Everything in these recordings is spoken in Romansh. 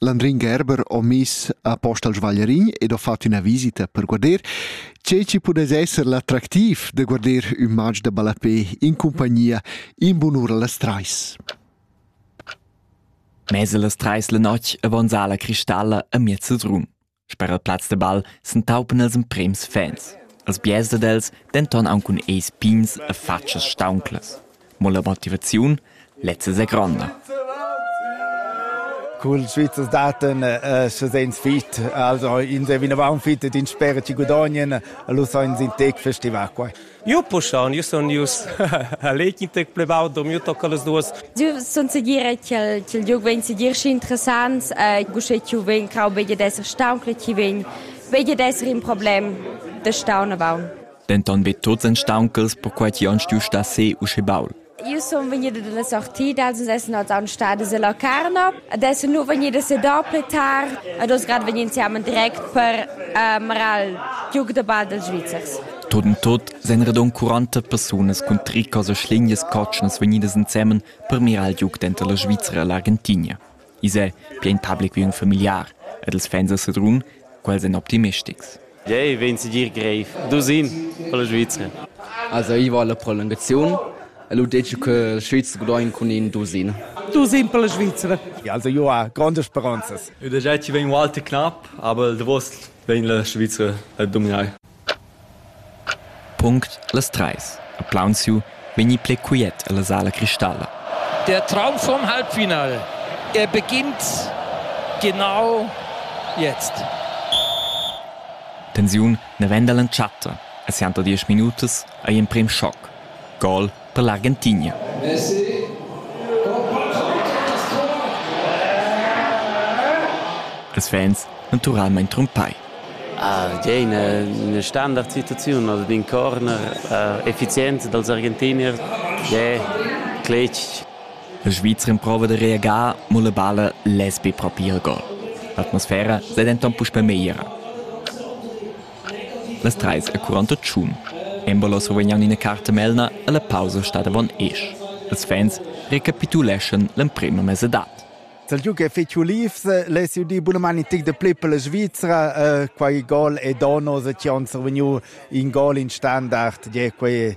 L'Andrin Gerber ho miss apost al svaglierin ed ho fat üna visita per guarder che chi pudess esser l'attractiv da guarder ün match da ballapè in cumpagnia in bunura las trais. Mez las trais la notg avanza la cristalla a miez drum. Sper il plaz de ball s'entaupan els emprems fans, els biars dad els denton aunc cun eis pigns e fatschas staunclas. Mo la motivaziun lezza è gronda. Cul Svizzers daten uh, se sens fit, also in de vinavant fit din spere ci gudagnien, lu sainz in tec festival quai. Io puschaun, io sun ius a l'equitec plevau, do miu tocca las duas. Io sun segira ch'il liug vegn segir schi interessant, gusche chi vegn crau veglia d'esser staun, che chi vegn veglia d'esser in problem da staun a baun. Denton be tots ein stauncals, perquai ti on stuiu star se uschè baul. Io sun vegnida da la sortida, sun essenot aunc stadas a Locarno. Adesso nu vegnida se dopo tar ed oz grad vegn insieme direct per um, eral giug da ball dals Svizzers. Tot in tot sen radon 40 persunas cun tricas e schlingias cotschnas vegnidas ensemen per mirar il giug denter la Svizzera e l'Argentinia. I's è pian public ün familiar ed els fans a Sedrun, quels èn optimistics. Jei vegn segir grev. Dusin per la Svizra. Also io va alla prolungazione e lu dice che il Svizzer gudogn cun in dusin. Dusin per la Svizra. Ja, also io ha grandes speranzas. Da già ci vegn Walter knapp, aber der Wurst vegn la Svizra a dominar. Punct las treis ha plaunsiu vegni pli quiet ella sala cristalla. Der Traum vom Halbfinal. Er beginnt genau jetzt. Tensiun naven dall'entschatta a sianta diesch minutas ei emprem schoc. Gol per l'Argentigna. Ils fans naturalmein trumpai. Ah, tgei ina, ina standardsituaziun oder d'in corner uh, effizient dals Argentinier, ja, cletg. La Svizra improva da reagar, mo la balla less be propir il gol. L'atmosfera sei denton puspei megliera. Las trais e quaranta tschun embolo survegnan ina carta melna alla pausa stada avon esch. Ils fans recapituleschan l'emprema mesadad. Dal giug è fetg ulivs, less dir bunamain in tic de pli per la Svizra. Uh, quai gol è Donos e ci han survegniu in gol in standard. Tge, quei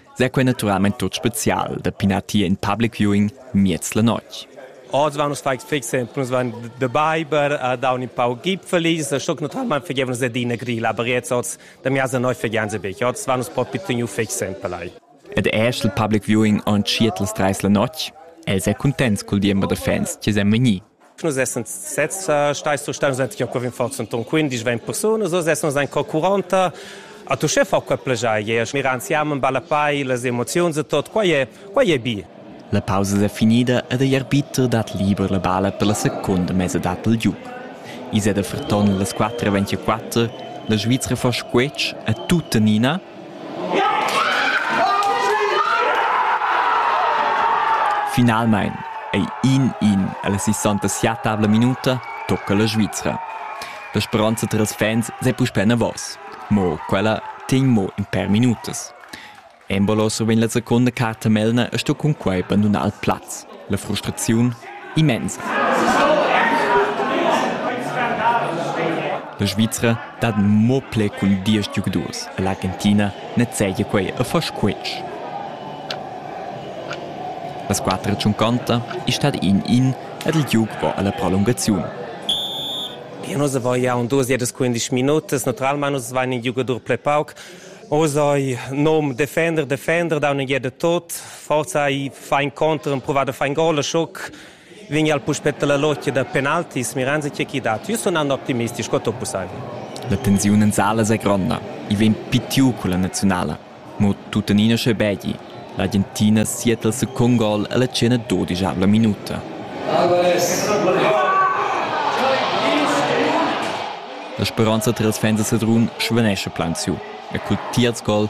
s'è quei naturalmein tut special da pinar tier in public viewing miez la notg. Oz van nus fai fix, nus van de Biber, uh, da un pau gipfelis, stock naturalmein fegevnus adina grila, aber jetzt oz, da mir se neu fegen se bec, oz van nus propi teniu fix pelai. Ed esch il public viewing on schietls dreis la notg, els è contents col diember da fans che sem vegni. Nus essan sezs stai surstau, nus ein co forza ton 15 20 persunas, oz essan nus co 40 A tu che fa quei plegiai e miran siamo in balla pai las emozioni e tot quai è quai è bi. La pausa è finida ed igl arbiter dat liber la balla per la seconda mesadad del giug. Is è da Ferton las 4.24, la Svizzera fa squetsch a tuttenina Finalmein ei in in ella sessanta-siatavla minuta tocca la Svizra. La speronza tils fans sei puspei enavos. Mo quella tegn mo in per minutas. Embolo survegn la secunda carta melna e sto cunquei bandunar il plaz. La frustraziun immensa. La Svizra dat mo pli cun diesch giugadurs e l'Argentina nezegia quei a far squetsch. La squadra tschunconta è stata in in ed il giug va alla prolungaziun. Ja, nus avevo ja un duas jedes 15 minutas, naturalmente nus waren in giocatore ple pauc. Oz hai nom defender, defender, da un jede tot. Forza i fa incontro, prova da fare in gol, schock, vegn al puspetta la lotgia da penaltis, miranzi c'è chi dat. Io sono un optimisti, sco tutto possibile. La tensiun en salas è gronda, i vegn pitiu con la nazionale, ma tuttenina sche begli. L'Argentina siet al second gol alla cena 12 minuta. La speranza tras fans a Sedrun svanesce plan su e col tiers gol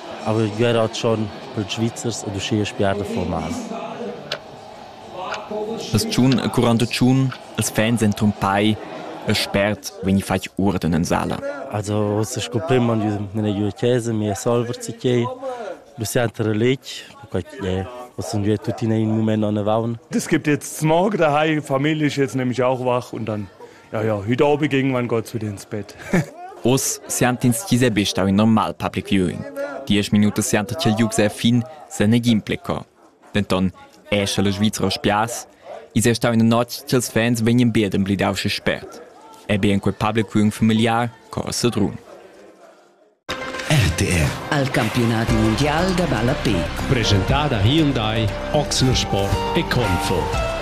Avev già rat schon pels Svizzers ed uschia spiar da formar. As tschun e curant tschun els fans han trumpai e spert vegni fatg uorden in sala. Also oz sco prim han giu nella giu chesa, mia solver si chei. Du senter a lec, perquai che was sind wir tuttina in Moment an der Waun. Es gibt jetzt Smog daheim, Familie ist jetzt nämlich auch wach und dann Ja, ja, heute Abend ging mein Gott zu dir ins Bett. Oz siantins ti sebe stau in normal public viewing. Diesch minuta sianta ch'il giug sei fin, se negin pleco. Denton è sche la Svizra spias, is è stau ina notg ch'ils fans vegnan bedem blidau sche spert. È be in quel public viewing familiar co a Sedrun. RTR al campionati mondial da ballapé. Presentada Hyundai, Oxner Sport e Confo.